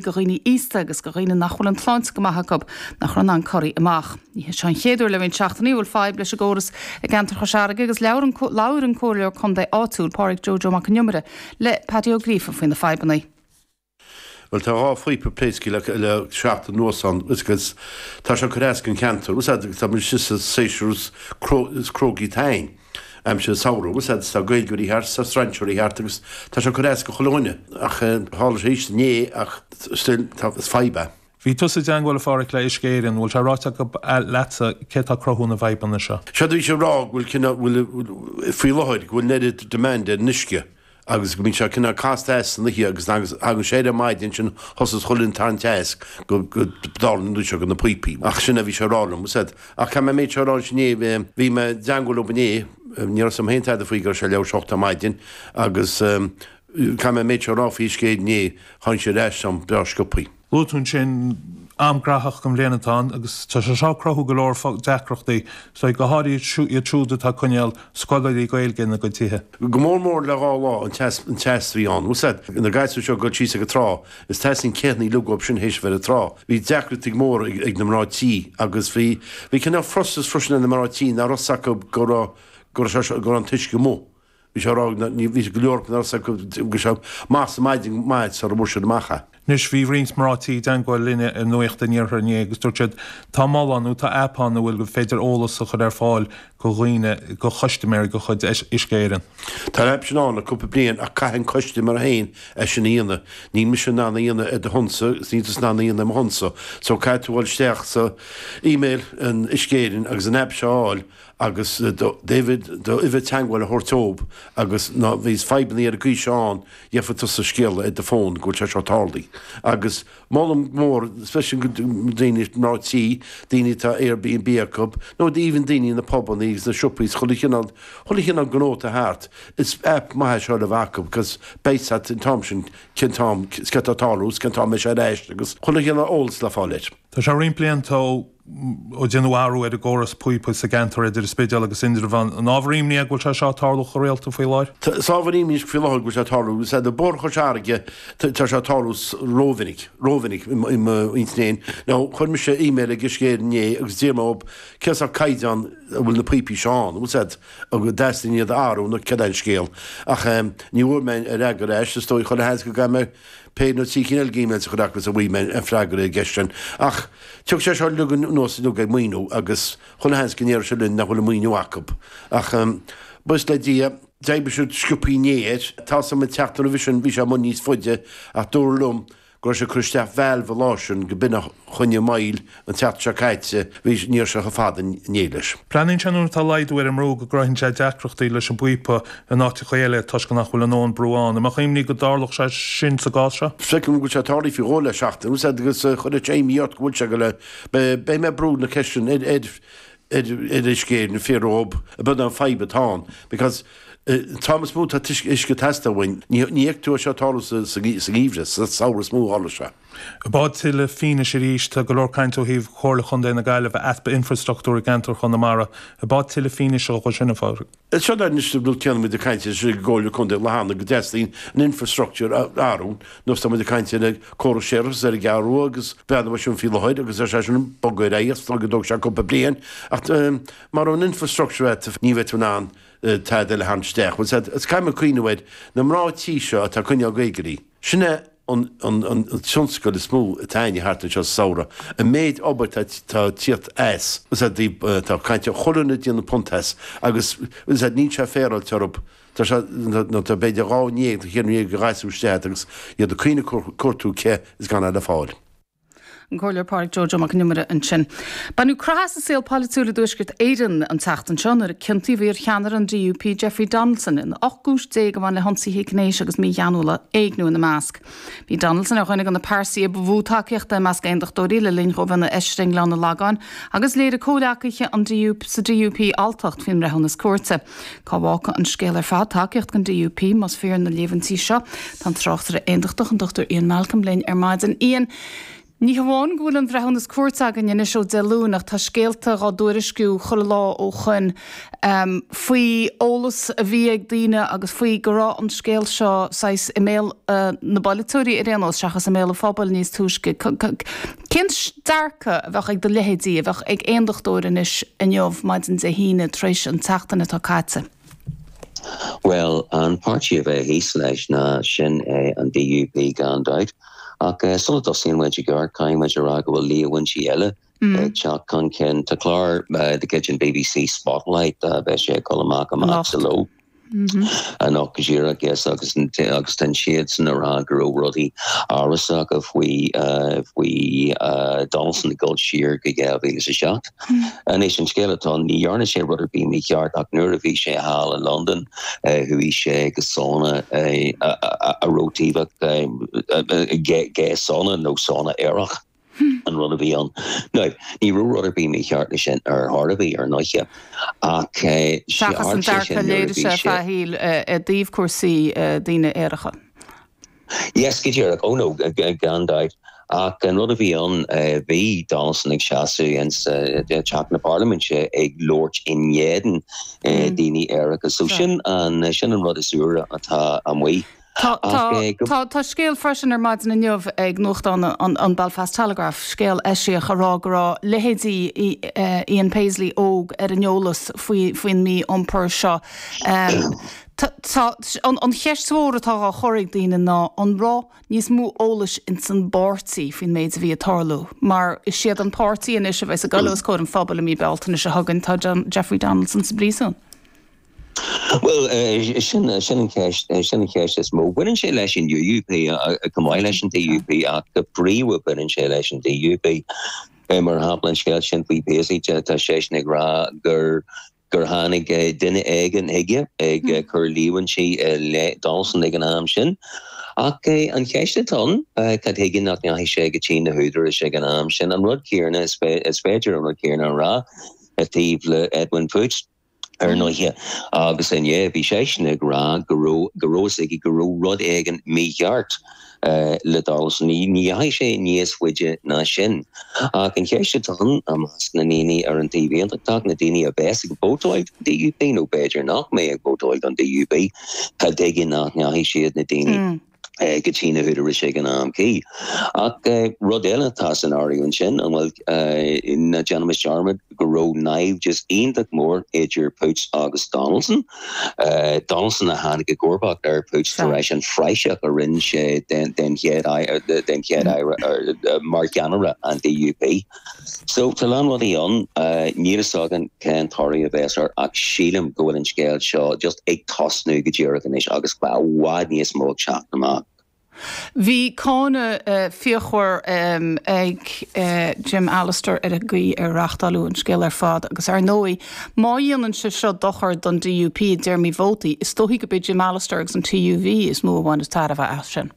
go dhaoine aosta agus go dhaoine nach bhfuil an tsláinte go maith acu, nach raibh in ann corraí amach. Ní hé seo an chéad uair le roinnt seachtainí a bhfuil fadhb leis an gcóras i gceantar Chois Fharraige agus labhair an Comhairleoir Contae áitiúil, Pádraig Joe Joe Mac an Iomaire, le Paddy Ó Gríofa faoi na fadhbanna. Bhuel, tá dhá phíopa pléasctha acu le seachtain anuas ann agus tá sé ag cur as don cheantar. Tá muid istigh sa séasúr is cruógaí atá ann. Aimsir samhraidh is tá Gaeilgeoirí thart, is tá strainséirí thart agus tá sé ag cur as go chuile dhuine. Ach tharla sé arís inné ach still tá, is fadhb é. Bhí tusa i dteangmháil a Phádraic le Uisce Éireann, bhfuil sé ráite acu leatsa céard atá ag cruthú na bhfadhbanna seo? Séard a bhí siad ag rá go bhfuil cineál, bhfuil, faoi láthair, go bhfuil an oiread demand ar an uisce agus go mbíonn sé cineál casta theas san oíche agus agus nuair a thagann sé air ar maidin ansin tá a fhios agat cuireann an tarraingt teas go go dtarlaíonn dó seo go na píopaí ach sin a bhí siad a rá liomsa ach caithfidh mé an méid seo a rá anois inné bhí bhí mé i dteangmháil leob inné ní raibh a fhios a'm féin tada faoi go raibh sé leath uair tar éis a hocht ar maidin agus caithfidh mé an méid seo a rá faoin scéal inné tháinig sé ar ais an-bhreá sciopthaí. Luaigh tú ansin an t-am gnóthach den bhliain atá ann agus tá sé seo ag cruthú go leor deacrachtaí, go háirithe iad siúd atá ag coinneáil scoláirí Gaeilge ina gcuid tithe. Go mór mór le dhá lá an teas an teas a bhí ann. Tá a fhios agat na gasúir seo ag dul síos ag an trá is teastaíonn cith ní uathu sin théis a bheith ar an trá. Bhí deacrachtaí mór ag ag na mná tí agus bhí bhí cineál frustration ar na mná tí nach raibh 's acu go raibh go raibh sé seo go raibh an t-uisce as. Bhí go leor nach raibh a fhios acu go raibh sé maith sa maidin maith sar a bhfuair siad amach é. Anois bhí roinnt mná tí i dteangmháil linne ar Nuacht an Iarthair inné agus dúirt siad tá mol ann nó tá aip ann a bhfuil gur féidir eolas a chur ar fáil go dhaoine, go chustiméirí de chuid Uisce Éireann. Tá an aip sin ann le cúpla bliain ach caithfidh an custiméir féin é sin a dhéanamh. Níl mise in ann a dhéanamh ar do shonsa agus níl tusa in ann a dhéanamh ar mo shonsa. So caithfidh tú dhul isteach sa email ag Uisce Éireann agus an aip seo a fháil agus do device do uimhir teangmháil a thabhairt dhób agus má bhíonn fadhbannaí ar an gcaoi seo ann gheibhfidh tusa scéala ar do fón go bhfuil sé seo tarlaigh agus molaim go mór especially go daoine mná tí, daoine atá Airbnb acu nó even daoine na pubannaí agus na siopaí chuile chineál chuile chineál gnó atá thart is app maith é seo le bheith acu cos beidh a fhios a't an t-am sin cén t-am cad tá tarlú is cén t-am a mbeidh sé ar ais agus chuile chineál eolas le fáil air. Tá sé roinnt blianta ó. ó déanadh athrú ar an gcóras píopaí sa gceantar idir an Spidéal agus Indreabhán. An ábhar ímní é go bhfuil sé seo ag tarlú chomh rialta faoi láthair? Is ábhar ímní faoi láthair go bhfuil sé ag tarlú, agus faoi Bhóthar Chois Fharraige tá sé ag tarlú rómhinic, rómhinic i mo intinn fhéin. Now chuir mise email ag Uisce Éireann inné agus d'iarr mé orthub cén sórt caighdeán a bhfuil na píopaí seo ann, bhfuil siad ag dteastaíonn iad a athrú nó cad é an scéal ach ní bhfuair mé aon fhreagra ar ais, is dóigh chomh maith le rá go gcaithfidh mé Pé nó trí chineál gíméil sa chreat agus a bhfaighidh mé an freagra ar an gceist sin. Ach tiocfaidh sé seo uilig anuas uilig ag maoiniú agus chuile sheans go ndéarfaidh siad linn nach bhfuil an maoiniú acu. Ach buíochas le Dia, d'oibrigh siad sciobthaí inné air. Tá suim ag teacht roimhe sin, bhí sé amuigh níos faide, ach dúradh liom go raibh sé ag cur isteach valve an lá sin go mb'in a choinnigh moill, An tseachtain seo caite bhí níor seo ar fad an nialais. Breathnaíonn sé nuair atá laghdú ar an mbrú go gcruthaíonn sé deacrachtaí leis an bpíopa in áiteachaí eile toisc nach bhfuil an an brú ann. An mbeadh imní go dtarlódh sé sin sa gcás seo? Feicim go bhfuil sé tarlaithe faoi dhó le seachtain agus fhad agus a chuirfidh sé imní ort go bhfuil sé go le beidh mé ag brú na ceisteanna ar ar ar Uisce Éireann fé romham a bead an fadhb atá ann because an t-am is mó atá uisce ag teastáil uainn ní fheicfidh tú é seo ag tarlú sa sa sa gheimhreadh sa samhradh is mó a tharlaíonn sé. Ab eod tuilleadh fianaise arís, tá go leor caint ó thaobh Chomhairle Chontae na Gaillimhe, easpa infreastruchtúr i gceantar Chonamara. Ab eod tuilleadh fianaise dhó sin, a Phádraig. Is fada anois go dtéanamid ag caint ar an gComhairle Contae Lathana go dteastaíonn an infreastruchtúr a athrú, nó is táimid ag caint ar an córas séarachas, ar an gCeathrú Rua ag breathnú ar sin faoi láthair agus tá sé sin ag bogadh ar aghaidh is dóigh go dtógfaidh sé cúpla bliain ach mara bhfuil an infreastruchtúr agat ní bheidh tú in ann tada eile a tharraingt isteach. Bhuel, sea, is caithfidh mé cuimhneamh ar na mná tí seo atá ag coinneáil Gaeilgeoirí. Sin é an tionscal is mó atá againn thart anseo sa samhradh, an méid obair atá ag tíocht as, is é daoibh atá caint chuile dhuine ag déanamh punt as, agus is é níl sé féaráilte orthu, tá sé, nó tá, b'fhéidir dhá ndéag, tá chéad in éag de ghasúir istigh agat, agus iad ag caoineadh ag cuartú cith is gan é le fáil. an Comhairleoir Pádraig Joe Joe Mac an Iomaire ansin. Baineadh croitheadh as an saol polaitiúil i dTuaisceart Éireann an tseachtain seo nuair a ciontaíodh iar-cheannaire an DUP Jeffrey Donaldson in 18 gcúis a bhain le hionsaithe gnéis agus mígheanúla, éigniú ina measc. Bhí Donaldson ar dhuine de na pearsaí ba mhó tacaíochta i measc Aondachtóirí le linn dhó bheith ina Fheisire i nGleann an Lagáin agus léirigh comhghleacaithe sa DUP alltacht faoin mbreithiúnas cúirte. Cá bhfágfaidh an scéal ar fad tacaíocht an DUP más fíor na líomhaintí seo? Tá an tráchtaire aondachtach, an Dr Ian Malcolm, linn ar maidin. Ian, Ní hamháin go bhfuil an bhreithiúnas cúirte againn anois ó Dé Luain ach tá scéalta dhá dtuairisciú chuile lá ó shoin faoi eolas a bhí ag daoine agus faoi go raibh an scéal seo saghas i mbéal na bpolaiteoirí ar aon nós seachas i mbéal an phobail níos túisce. Cén dearcadh a bheadh ag do leithéidí, a bheadh ag Aondachtóir anois, inniu, maidin Dé hAoine, tar éis an tseachtain atá caite? Bhuel, an páirtí a bheidh thíos leis ná sin é an DUP gan dabht, ach sula dtosaíonn muid i gceart, caithfidh muid a rá go bhfuil líomhaintí eile ag teacht chun cinn. Tá clár de chuid an BBC, Spotlight, beidh sé ag dul amach amach sa ló. ann go díreach. Yes agus d'fhan siad sin a rá go raibh rudaí amhrasacha faoi Donaldson ag dul siar go 2007. Anois, an scéal atá ann, ní dhearna sé rud ar bith mícheart ach nuair a bhi sé thall i Londain chuaigh sé go sauna a raibh taobh gay sauna nó sauna aerach. an rud a bhí ann. Now, ní raibh rud ar bith mícheart leis sin ar chor ar bith, ar ndóighe, ach eh seachas an dearcadh a léirigh sé ar feadh a shaoil i dtaobh cúrsaí daoine aeracha. Yes, go díreach. Oh no, gan dabht. Ach an rud a bhí ann, bhí Donaldson ag seasamh ins an Teach na Parlaiminte ag labhairt in éadan daoine aeracha, so sin an rud is úire atá amuigh. Tá scéal freisin ar maidin inniu ag nuachtán an Belfast Telegraph, scéal eisiach ag rá go raibh leithéidí Ian Paisley óg ar an eolas faoin mí-iompar seo. An cheist mhór atá á chur ag daoine ná an raibh níos mó eolais ins an bpáirtí faoin méid a bhí ag tarlú? Mar is iad an páirtí anois a bheas ag goil os comhair an phobail i mí Bealtaine seo chugainn, tá Jeffrey Donaldson sa bpríosún. Bhuel, sin an cheist, sin an cheist is mó. Baineann sé leis an UUP chomh maith leis an DUP ach go príomha baineann sé leis an DUP. Mar shampla, an scéal sin faoi Paisley, tá seisean ag rá gur gur tháinig duine éigin chuige ag cur líomhaintí i leith Donaldson ag an am sin. Ach an cheist atá ann, cad chuige nach ndeachaigh sé go dtí na húdaráis ag an am sin? An rud céanna, is féidir an rud céanna a rá i dtaobh le Edwin Poots. ar ndóighe, agus inné bhí seisean ag rá go raibh, go raibh fhios aige go raibh rud éigin mícheart le Donaldson ní dheachaigh sé níos faide ná sin. Ach an cheist atá ann, i measc na ndaoine ar an Taobh Aontachtach, na daoine a bheas ag vótáil don DUP, nó b'fhéidir nach mbeidh ag vótáil don DUP, cad chuige nach ndeachaigh siad, na daoine. go dtí na húdaráis ag an am cuí. Ach rud eile atá san áireamh ansin, an bhfuil? Ná déanaimis dearmad go raibh naimhdeas iontach mór idir Poots agus Donaldson. Donaldson a tháinig i gcomharbacht ar Poots tar eis an phraiseach a rinne sé den chéad, den Chéad-Aire mar cheannaire an DUP. So, tá a lán rudaí ann. Níl fhios againn cén toradh a bhéas air ach sílim go bhfuil an scéal seo just ag tosnú go díreach anois agus go bhfuil i bhfad níos mó ag teacht amach. Bhí cáineadh fíochmhar ag Jim Allister ar an gcaoi ar reachtáileadh an scéal ar fad agus ar ndóigh má dhéanann sé seo dochar don DUP i dtéarmaí vótaí, is dóichí gurb é Jim Allister agus an TUV is mó a bhaineas tairbhe as sin.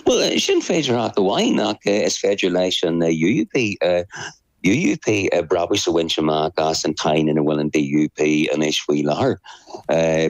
Bhuel, sin féidearthacht amháin, ach is féidir leis an UUP brabús a bhaint amach as an tsáinn ina bhfuil an DUP anois faoi láthair.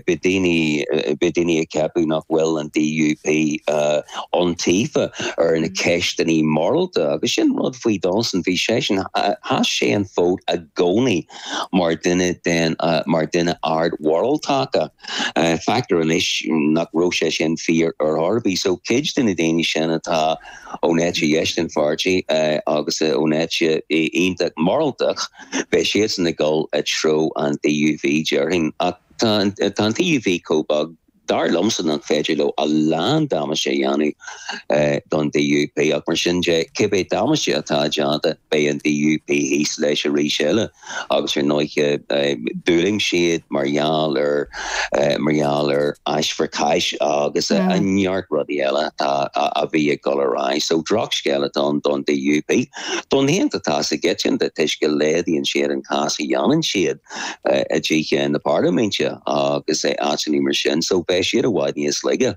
Beidh daoine ag ceapadh nach bhfuil an DUP iontaofa ar na ceisteannaí morálta, agus sin rud faoi Donaldson, bhí seisean, sheas sé an fód i gcónaí mar dhuine den, mar dhuine ardmhoráltachta. Feictear anois nach raibh sé sin fíor ar chor ar bith, so cuid de na daoine sin atá ón eite dheis den pháirtí agus ón eite iontach mhoráltach, beidh siadsan ag dul i dtreo an TUV déarfainn. Ach tá an TUV chomh beag dar liomsa nach féidir leo a lán damáiste a dhéanamh don DUP, ach mar sin de, cibé damáiste atá déanta, beidh an DUP thíos leis arís eile. agus ar ndóighe d'fhulaing siad mar gheall ar mar gheall ar ash for cash agus neart rudaí eile a bhí ag dul ar aghaidh. So droch scéal atá ann don DUP. Don aontachtas go ginearálta toisc go laghdaíonn siad an cás a dhéanann siad i dTithe na Parlaiminte agus áiteanna mar sin so beidh siad i bhfad níos laige.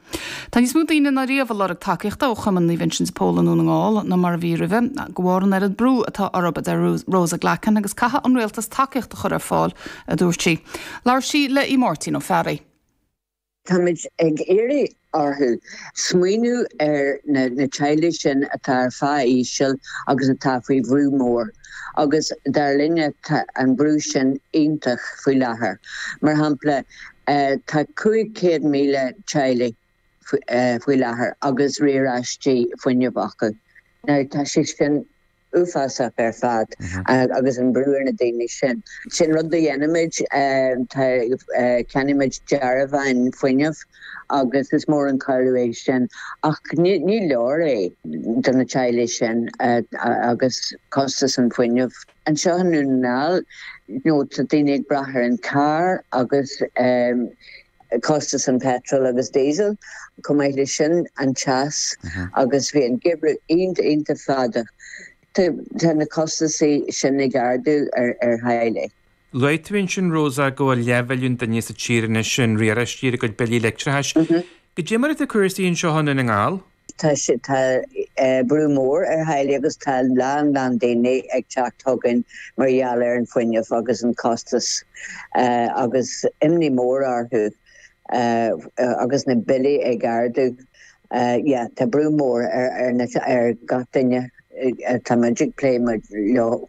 Tá níos mó daoine ná riamh ag lorg tacaíochta ó Chumann Naomh Uinseann de Pól i nDún na nGall ná mar a bhí roimhe, de bharr an oiread brú atá orthu, a deir Rosa Glackin, agus caithfidh an Rialtas tacaíocht a chur ar fáil, a dúirt sí. Labhair sí le Máirtín Ó Fearraigh. Táimid ag iarraidh orthu smaoineamh ar na teaghlaigh sin atá ar phá íseal agus atá faoi bhrú mór. agus dar linn tá an brú sin iontach faoi láthair. Mar shampla, tá 500,000 teaghlaigh faoi láthair agus riaráistí fuinnimh acu. Now tá sé sin uafásach ar fad agus an brú ar na daoine sin. Sin rud a dhéanaimid, tá, ceannaímid dearbháin fuinnimh. agus is mór an cuidiú é sin. Ach ní leor é do na teaghlaigh sin agus costas an fhuinnimh. Anseo i nDún na nGall, now tá daoine ag brath ar an charr agus costas an petrol agus diesel. Chomh maith le sin, an teas agus bhí an geimhreadh iontach iontach fada. Tá na costasaí sin ag ardú ar theaghlaigh. Luaigh tú ansin, Rosa, go bhfuil leathmhilliún duine sa tír anois in riaráistí ar a gcuid billí leictreachais. Cad é mar atá cúrsaí anseo i nDún na nGall. Tá sé, tá brú mór ar theaghlaigh agus tá a lán lán daoine ag teacht chugainn mar gheall ar an fuinneamh agus an costas agus imní mór orthu agus na billí ag ardú. yeah tá brú mór ar ar gach duine atá muid ag plé leo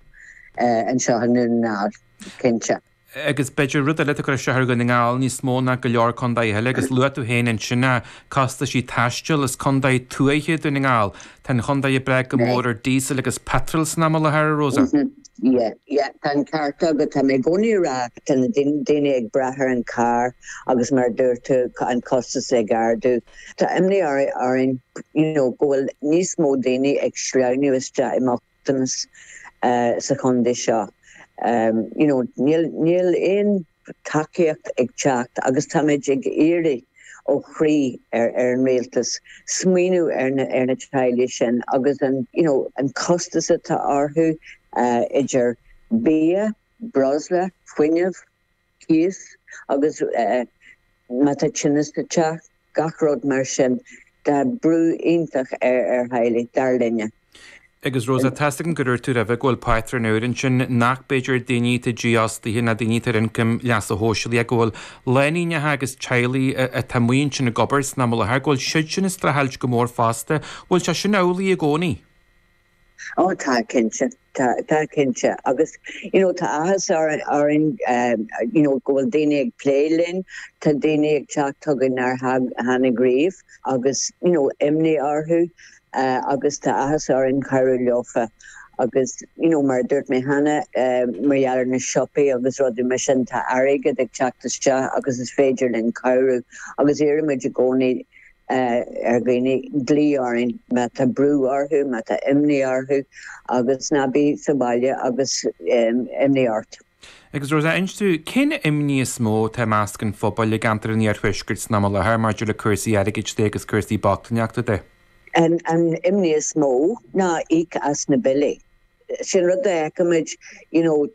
anseo i nDún na nGall cinnte. Agus b'fhéidir rud eile, atá ag cur isteach ar Dhún na nGall níos mó ná go leor contaetha eile agus luaigh tú féin ansin na costaisí taistil, is contae tuaithe Dún na nGall, tá an chontae ag brath go mór ar díosal agus peatroil san am i láthair a Rosa? yeah yeah tá an ceart agat, tá mé i gcónaí ag rá tá na daoine ag brath ar an carr agus mar a dúirt tú an costas ag ardú. Tá imní orainn go bhfuil níos mó daoine ag sleamhnú isteach i mbochtanas sa chontae seo. Níl aon tacaíocht ag teacht agus táimid ag iarraidh ó chroí ar an Rialtas smaoiniú ar na teaghlaigh sin agus an costas atá orthu idir bia, breosla, fuinneamh. cíos agus má tá tine sa teach, gach rud mar sin. Tá brú iontach ar ar theaghlaigh, dar linne. Agus Rosa, tá a fhios agam gur dhúirt tú roimhe go bhfuil pátrúin úr ansin nach b'fhéidir daoine atá dífhostaithe ná daoine atá ar ioncam leasa shóisialaigh ach go bhfuil lánúineacha agus teaghlaigh atá amuigh ansin ag obair san am i láthair, go bhfuil siadsin ag streachailt go mór fosta. Bhfuil sé sin amhlaidh i gcónaí? Ó, tá, cinnte. Tá, tá, cinnte. Agus, you know, tá áthas orainn, orainn, you know, go bhfuil daoine ag plé linn. Tá daoine ag teacht chugainn nár tháinig riamh agus, you know, imní orthu agus tá áthas orainn cabhrú leofa. Agus, you know, mar a dúirt mé cheana, mar gheall ar na siopaí agus rudaí mar sin, tá airgead ag teacht isteach agus is féidir linn cabhrú. Agus iarraimid i gcónaí. ar dhaoine glaoch orainn má tá brú orthu, má tá imní orthu agus ná bí sa bhaile agus imní ort. Agus Rosa, inis dúinn, cén imní is mó atá i measc an phobail i gceantar an iarthuaiscirt san am i láthair maidir le cúrsaí airgid de agus cúrsaí bochtaineachta de? An imní is mó ná íoc as na billí. Sin rud a fheicimid, you know,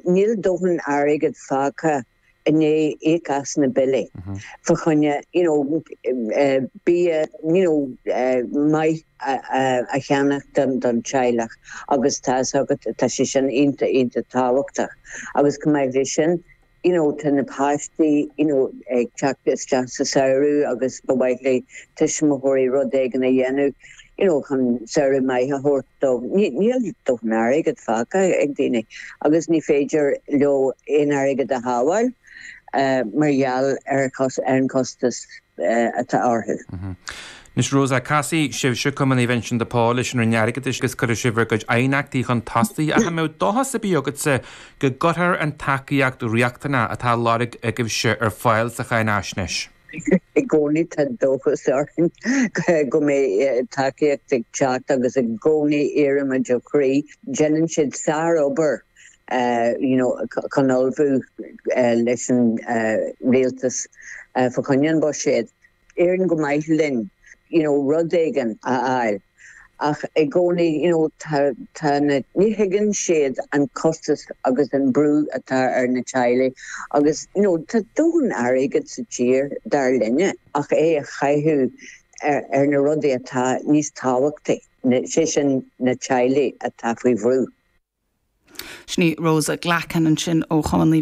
níl dóthain airgead fágtha i ndiaidh íoc as na billí fa choinne you know bia you know maith a cheannach don don teaghlach agus tá fhios agat tá sé sin iontach iontach tábhachtach agus chomh maith leis sin you know tá na páistí you know ag teacht isteach sa samhradh agus ba mhaith le tuismitheoirí rud éigin a dhéanamh you know chun samhradh maith a thabhairt dóibh. Níl dóthain airgead fágtha ag daoine agus ní féidir leo aon airgead a shábháil mar gheall ar an gcostas atá orthu. Anois Rosa, casfaidh sibhse, Cumann Naomh Uinseann de Pól, leis an Roinn Airgeadais agus cuirfidh sibh bhur gcuid aighneachtaí chun tosaigh ach an mbeadh dóchas ar bith agatsa go gcuirfear an tacaíocht riachtanach atá á lorg agaibhse ar fáil sa cháinfhaisnéis? I gcónaí tá dóchas orainn go mbeidh tacaíocht ag teacht agus i gcónaí iarraimid ó chroí, déanann siad sárobair you know chun ullmhú leis an rialtas fá choinne an bhuiséad, éiríonn go maith linn you know rud éigin a fháil. ach i gcónaí you know tá tá na, ní thuigeann siad an costas agus an brú atá ar na teaghlaigh agus you know tá dóthain airgead sa tír, dar linne, ach é a chaitheamh ar ar na rudaí atá níos tábhachtaí, sé sin na teaghlaigh atá faoi bhrú. Sin í Rosa Glackin ansin ó Chumann Naomh.